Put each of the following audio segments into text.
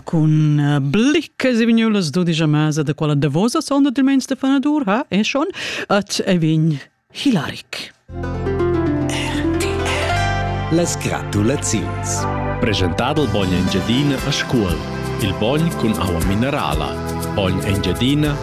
cun eh, bliccas e vignulas dudigia mesa da quella davosa sonda del mens de fanadur ha e schon at e vin Hilaric. Las gratulaziuns. Presentado il bogn Engiadina a scuol. Il bogn cun aua minerala. Bogn Engiadina.ch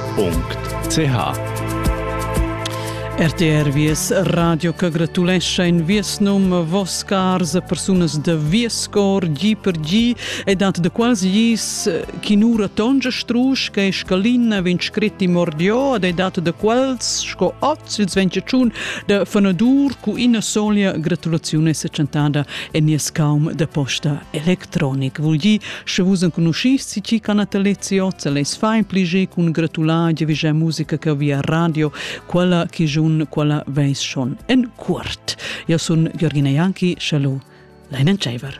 RTR Vies Radio che gratulescha in Vies num Vos cars persunas da Vies cor gi per gi e dat de quasi gis eh, chinura tonge strusch che scalina vin scritti mordio ed e dat de quels sco oz ils ventgetun de fanadur cu ina solia gratulazione se chantada en nies caum de posta electronic vul gi Sche vus enconuschis ci ca natalizio, se les fai pligi cun gratular giavigea musica che via radio, quella chi giun quella veis schon en curt. Io sun Giorgina Janki, shallo, Leinen Tscheiver.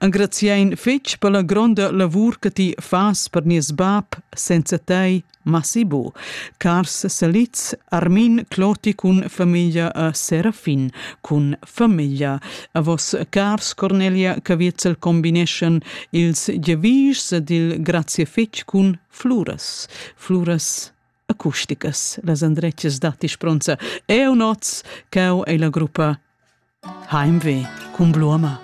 Engraziein fetg per la gronda lavur che ti fas per nies bab, senza tei, Masibo. Cars Seliz, Armin Cloti cun famiglia a Serafin, cun famiglia. A vos cars Cornelia Caviezel combineschan ils gevischs dil grazie fetg cun fluras. Fluras acusticas, las andrettas datti spronza. Eu noz, cau ei la gruppa Heimweh cun Bluama.